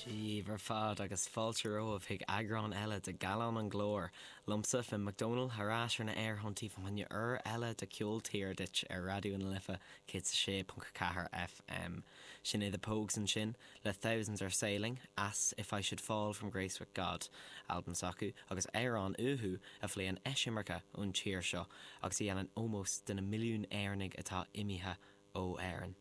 Daoibh ar fad agus fáilte romhaibh chuig eagrán eile de Gallán an Ghlóir, liomsa, Finn McDonald, thar ais ar na aerthonntaí fá choinne uair eile de Ceol Tíre Duit ar Raidió na Life 106.4 FM. Sin é The Pogues ansin. le Thousands Are Sailing as If I Should Fall From Grace With God, albam s'acu, agus amhrán uathu a phléann eisimirce ón tír seo agus a dhéanann ómós do na milliún Éireannaigh atá imithe ó Éirinn.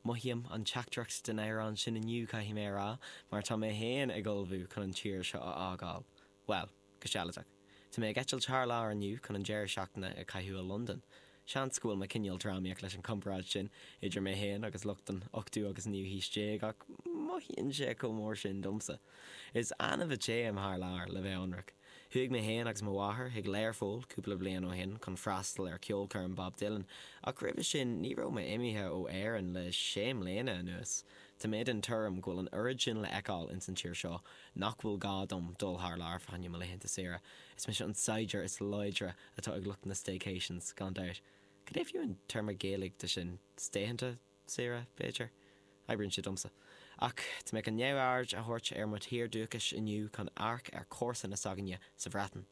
Mothaím an teachtaireacht den amhrán sin inniu, caithfidh mé a rá, mar tá mé féin ag ullmhú chun an tír seo a fhágáil. Bhuel, go sealadach, tá mé ag eitilt thar lear inniu chun an deireadh seachtaine a chaitheamh i Londain. Seans go bhfuil mé cineál drámaíoch leis an gcomparáid sin idir mé féin agus lucht an ochtú agus an naoú haois déag ach mothaíonn sé chomh mór sin domsa. Is annamh a théim thar lear, le bheith ionraic. Chuaigh mé féin agus mo mháthair chuig Learpholl cúpla bliain ó shin chun freastal ar cheolchoirm Bob Dylan ach roimhe sin ní raibh mé imithe ó Éirinn le sé mbliana anuas. Tá mé den tuairim go bhfuil an oiread sin le fheiceáil ins an tír seo Nach bhfuil gá dom dul thar lear fá choinne mo laethanta saoire? Is mise an saighdiúir is láidre atá ag lucht na staycations, gan dabht. Cad é fiú an téarma Gaeilge de sin? Staythanta saoire, b'fhéidir? Oibríonn sé domsa. Ach tá mé chun neamhaird a thabhairt ar mo thír dúchais inniu chun amharc ar chomharsana s'againne sa Bhreatain.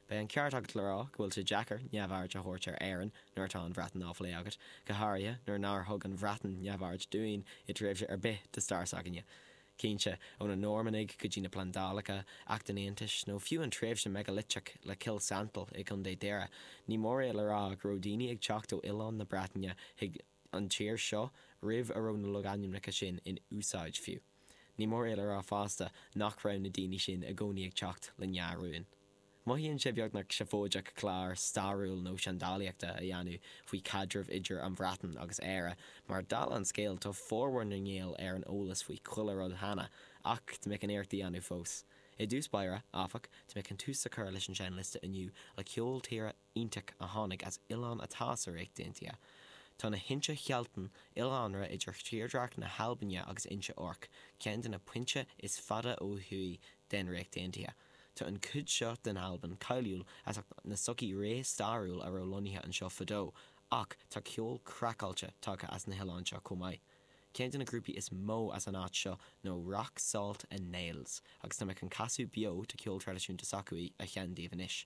Beidh an ceart agat le rá go bhfuil sé deacair neamhaird a thabhairt ar Éirinn nuair atá an Bhreatain á phlé agat, go háirithe nuair nár thug an Bhreatain neamhaird dúinn i dtréimhse ar bith de stair s'againne. Cinnte, ó na Normannaigh go dtí na plandálacha, Acht an Aontais, nó fiú an tréimhse meigiliteach le Cill Santail i gContae Dhoire, ní mór é le rá go raibh daoine ag teacht ó oileáin na Breataine chuig an tír seo roimh a raibh na logainmneacha sin in úsáid fiú. Ní mór é le rá fosta nach raibh na daoine sin i gcónaí ag teacht le ndea-rúin. Mothaíonn sé beagnach seafóideach clár stairiúil nó seandálaíochta a dhéanamh faoi chaidreamh idir an Bhreatain agus Éire mar, dála an scéil, tá formhór na nGael ar an eolas faoi chuile rud cheana, ach tá mé chun iarracht a dhéanamh fós. I dtús báire, áfach, tá mé chun tús a chur leis an seinnliosta inniu le ceol tíre iontach a tháinig as oileán atá sa Ríocht Aontaithe. Tá na hInse Shealtainn, oileánra idir thírdhreach na hAlbaine agus Inse Orc, ceann de na pointe is fada ó thuaidh den Ríocht Aontaithe. Tá an chuid seo den Albain cáiliúil as ucht na sochaí réamhstairiúil a raibh lonnaithe anseo fadó, ach tá ceol craiceáilte tagtha as na hoileáin seo chomh maith. Ceann de na grúpaí is mó as an áit seo nó Rock Salt and Nails, agus tá mé chun casadh beo de ceol traidisiúnta s'acu a sheinnt daoibh anois.